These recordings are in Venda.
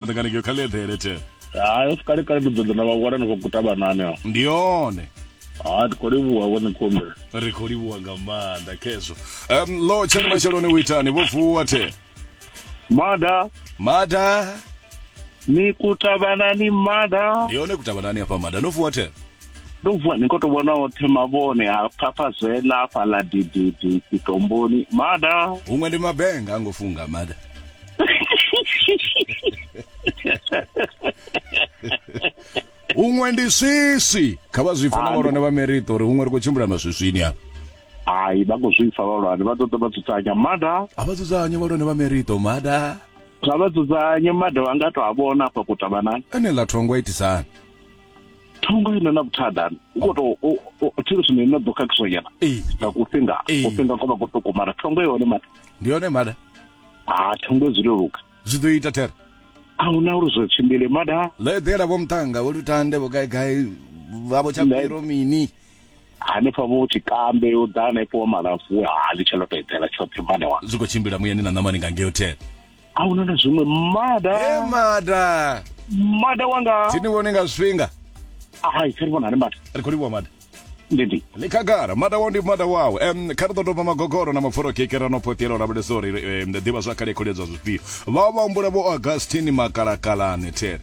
Ndi kana ke khale eḓele the. Hayi usikale kale ndi ḓoḓa na vha wana ni khou kuta vhanani aho. Ndi yone. Ha ndi khou livhuwa vho ni khombela. Ri khou livhuwa nga maanḓa khezwo. Um lo tshani matsheloni u itani vho vuwa the. Mada. Mada. Ni kuta vhanani mada. Ndi yone kuta vhanani hafha mada no vuwa the. Ndo vuwa ni khou tou vhona oṱhe mavhone ha phapha zwela hafhaḽa dididi tsitomboni mada. Huṅwe ndi mabenga a ngo funga mada. huṅwe ndi swiswi kha vha zwipfa na vhalwane vha merito uri huṅwe ri khou tshimbila maswiswini a hai vha khou zwipfa vhalwane vha ṱoḓa vha dzudzanya mada a vha dzudzanye vhalwane vha merito mada kha vha dzudzanye mada vha nga to a vhona afha kutavanani ene ḽa thongo itisani thongo ine na vhuthadani u khou tou u- u- tshiri zwino ine ḓo khakhiswa nyana ee nga kufhinga Ee. kufhinga ko vha ko tokomara thongo yone mada ndi yone mada ha tho ngo zwi leluka zwi ḓo ita thera a hu na uri zwo tshimbile mada ḽo eḓela vho muṱanga vho lutande vho gaigai vhavho tsha Ḽe- piro mini hanefha vho tshikambe yo ḓa hanefho wa malafu ha ḽi tsha loto eḓela tshoṱhe mada wa zwi khou tshimbila muyani na ṋamani nga ngeo thera a hu na na zwiṅwe mada e mada mada wanga thi ni vhone nga zwifhinga hai tsha ri vhona hani mada ri khou livhuwa mada ndidi ḽi khagala mada wau ndi mada wau um kha ri ḓo doba magogoro na mapfura kekera no phoṱela u lavhelesa uri um ḓivha zwa kale kholiedzwa zwifhio vha vha humbula vho augustine makalakalane there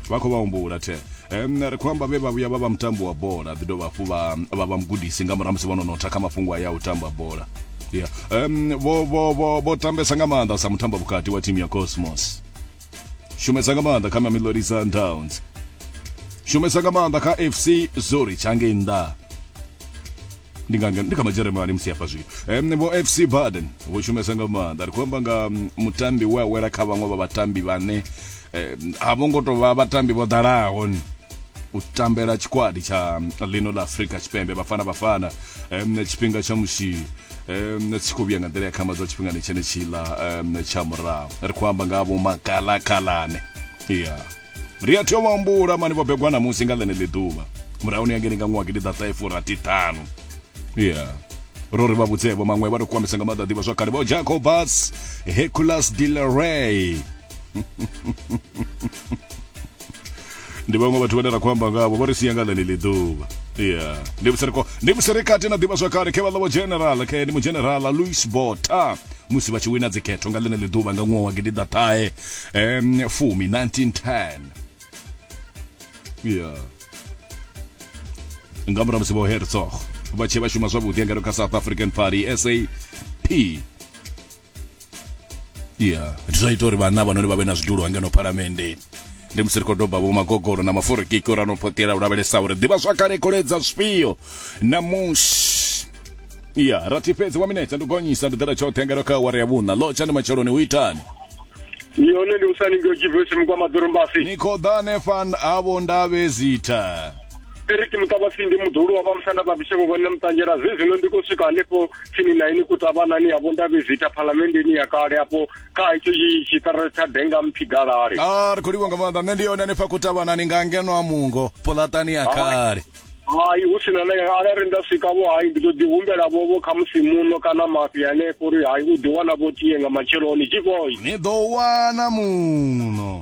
vha khou vha humbula there um ri khou amba vhe vha vhuya vha vha mutambi wa bola ḓi dovha hafhu vha vha vha mugudisi nga murahu musi vho no notha kha mafhungo a ya u tamba bola ya um vho vho vho vho tambesa nga maanḓa sa mutambo vhukati wa thimu ya cosmos shumesa nga maanḓa kha mamelodi sundowns shumesa nga maanḓa kha fc zurich hangei nnḓa ndi nga ndi kha majeremani musi hafha zwino um, vho fc baden vho shumesa nga maanḓa ri khou amba nga mm, mutambi we a wela kha vhaṅwe vha vhatambi vhane um, a vho ngo tou vha vhatambi vho ḓalaho u tambela tshikwadi tsha mm, ḽino ḽa afrika tshipembe vhafana vhafana um, tshifhinga tsha musi um tshi khou vhuya nga nḓila ya khama dza tshifhingani tshenetshiḽa um tsha murahu ri khou amba nga vho makalakalane ya ri a tea u ambula mani vho begwa namusi nga ḽeneḽi ḓuvha murahuni ya ngeni nga ṅwaha gidi ḓaṱahefurathiṱhanu ya ro ri vha vhudzevho maṅwe vha ri kwamisa nga maḓa ḓivha zwa kale vho jacobus heculas dileray ndi vhaṅwe vhathu vhane ra khou amba ngavho vho ri sia nga ḽeneḽi ḓuvha ya ndi vhusereko ndi vhuserekati na ḓivhazwakale khe vha ḽa general khe ndi mugenerala louis bota musi vha tshi wina dzikhetho nga ḽeneḽi ḓuvha nga ṅwaha wa gidiḓaṱahe um fumi 1910 ya nga murahu musi vho herzog vha tshee vha shuma zwavhuḓi engeno kha south african party sap ya ndi zwa ita uri vhanna vhanoni vha vhe na zwidulo hangeno phalamenndeni ndi musi ri khou doba vho magogoro na maforikiki uri ano phoṱela u lavhelesa uri ḓivha zwakale koledza zwifhio namusi ya rathi fhedzi wa minetse ndi gonyisa ndi ḓela tshoṱhe ngeno kha awara ya vhuṋa lotsha ndi matsheloni u itani yone ndi usani ngeo jivesi mukwa maḓorombasi ni khou ḓa hanefha havho ndavhe zitha ri ri timuta vhafindi muḓulu wa vha musanda vha vhisheko vhone muṱanzhela zwi zwino ndi khou swika hanefho tsini na ini kutavhanani ya vhondavhizita phalamenndeni ya kale afho kha hetsho tshiṱara tsha denga mpfi galale a ah, ri khou livha nga maanḓa nṋe ndi yone hanefha kutavhanani nga ngeno a mungo pulatani ya kale hai hu sina na ara ri nda swika vho hai ndi ḓo ḓi humbela vho vho kha musi muno kana mafhi hanefho uri hai u ḓi wana vho tie nga matsheloni tshivoi ni ḓo wana muno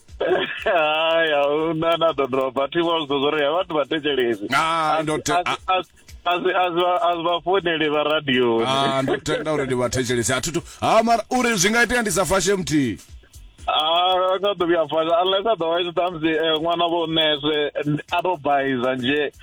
haya huna na ḓo dropa thi vha zwiḓo zwori ya vhathu vha thetshelesi Ah, ndo te- ah. asi vha founeli vha radioni Ah, ndo tenda uri ndi vhathetshelesi a thithu ha mara uri zwi nga itea ndi sa fashe muthihi Ah, nga ḓo vhuya fasha unless a ḓo vha tshi ṱhamusi eh, ṅwana vho nese a to baiza nje